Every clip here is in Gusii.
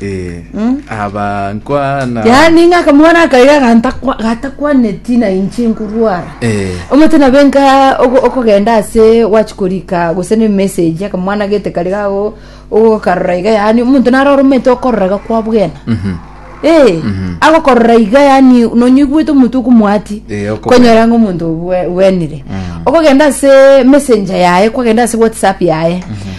Eh, abankwana. yaani ng'a akamwana akaiga gantakwa- gatakwaneti na inche nkorwara Eh, omate nabe nka oko- okogenda ase wachikorika gose ne message akamwana gete kari gago ogokarora iga yaani omonto narora omanyete okorora iga kwa bwena mhm. Eh, agokorora iga yaani nonyoigwete omonto okomwati Eh, okobwena. konyora ng'a omonto obwe- bwenire okogenda ase messenger yaye kwagenda ase whatsapp yaye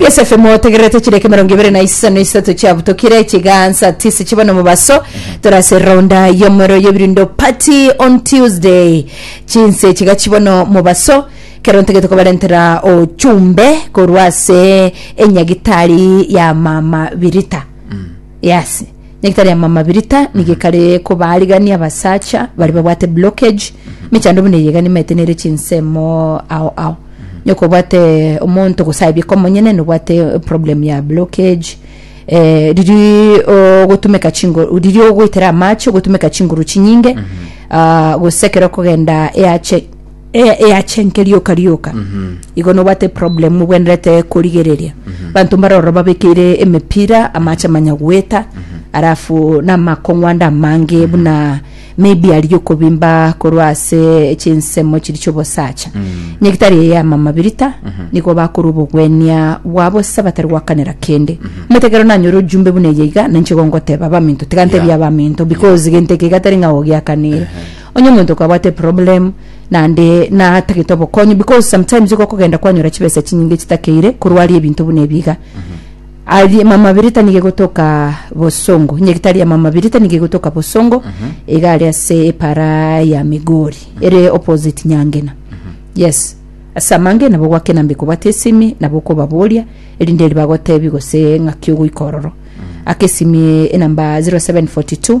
Yosefe motegererete chireka emerongo ebere na isano isato chiabutokire chigaansa tisi chibone omobaso tore ase eronda y'omorero y'ebirundo party on Tuesday. Chinse chiga chibone omobaso kero ntagete kobarentera ochumbe korwa ase enyagitari ya mama Birita. Yes. Nyagetari ya mama Birita nigo ekare kobaarigania abasacha baria babwate blockage mechando buna eyio egani maete nere chinsemo ao ao nyoko obwate omonto gose aye bika omonyene nobwate problem ya blockage eh, riria ogotumeka chinguru riria ogoitera amache ogotumeka chinguru chinyinge ah, gose ekero okogenda eache eye eyachenke rioka rioka igo nobwate problem obwenerete korigereria banto mbaroro babekeire emepira amache manya gweta arafu namakong'wanda amange buna maybe aria okobimba korwa ase chinsemo chiri chiobosacha nyagitari eye ama mabirita nigo bakora obogwenia bwabo se batari gwakanera kende omanyete ekero nanyora ojumbe buna eye iga ninche igo ngoteba baminto tiga ntebie abaminto because gento eke iga tari ng'a gogiakanire Onye omonto kwabwate eproblem naende natagete obokonyi because sometimes igo okogenda kwanyora chibesa chinyinge chitakeire korwa aria ebinto buna ebi iga. Aria mama birita nigo egotoka bosongo, nyagitari ya mama birita nigo egotoka bosongo iga aria ase epara ya Migori ere opposite Nyangena. Yes. Ase amange nabo gwakena mbe kobwate esimi nabo okobaboria erinde eri bagotebi gose ng'aki ogoika ororo. Aka esimi enamba 0742.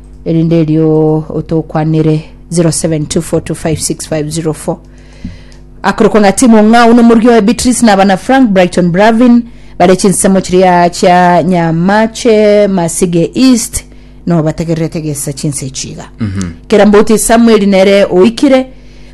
erinde erio otokwanere 0724256504 akorokwa ng'a timu ng'ao n'omorigi oye beatrice na abana frank brighton bravin bare chinsemo chiria chia nyamache masige east nobatagererete gesa chinse echiga kera mbouti samuel nere oikire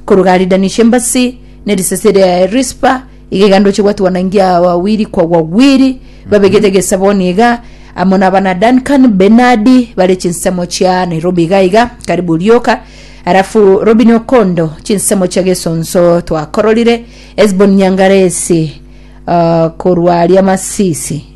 koruga aridanisha embasi ne risasi ria rispa Igaiga ndoche gwatwanangia wawiri kwa wawiri babegete egesaboni iga amo na abana Duncan Benadi bare chinsemo chia Nairobi iga iga karibu rioka arafu Robin Okondo chinsemo chia Gesonso twakororire Esbon Nyangaresi uh, korwa Riamasisi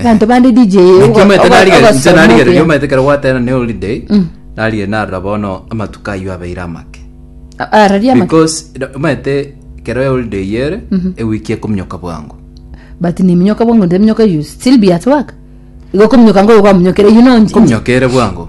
Abanto bande DJ ogo- Naki omanyete ogo- narigere inche ogosoma narigere obuya. ria omanyete ekero gwatera ne holiday narigere narora bono amatuko ayio abeire amake A- araria amaki. because ira- omanyete ekero ya holiday eyio ere ewiki ekominyoka bwango but neminyoka bwango nteminyoka you still be at work igo kominyoka ngoyo kwamunyokere you know nji- nji- kominyoka ere bwango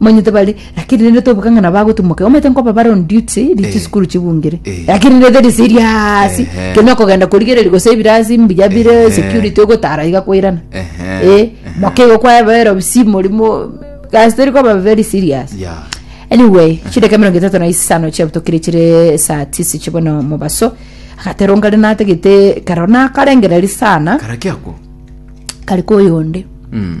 manyete bari lakini rende tobuka ng'a nabo agotimoka omanyete nkoba bare on duty ri Eh. chisukuru chibungire Eh. lakini rende teri siri ase Ehe. kende okogenda korigereria gose ebirasi mbuya bire Ehe. security ogotara iga koirana Ehe. Eh, moke igo kwaebera obisi morimo gasi tori koba very serious ya anyway chideka mirongo itatu na isano chiabutokire chire saa tisi chibono mobaso agateronga rina ategete karona karengereri sana karaki ako kari koyonde Mm.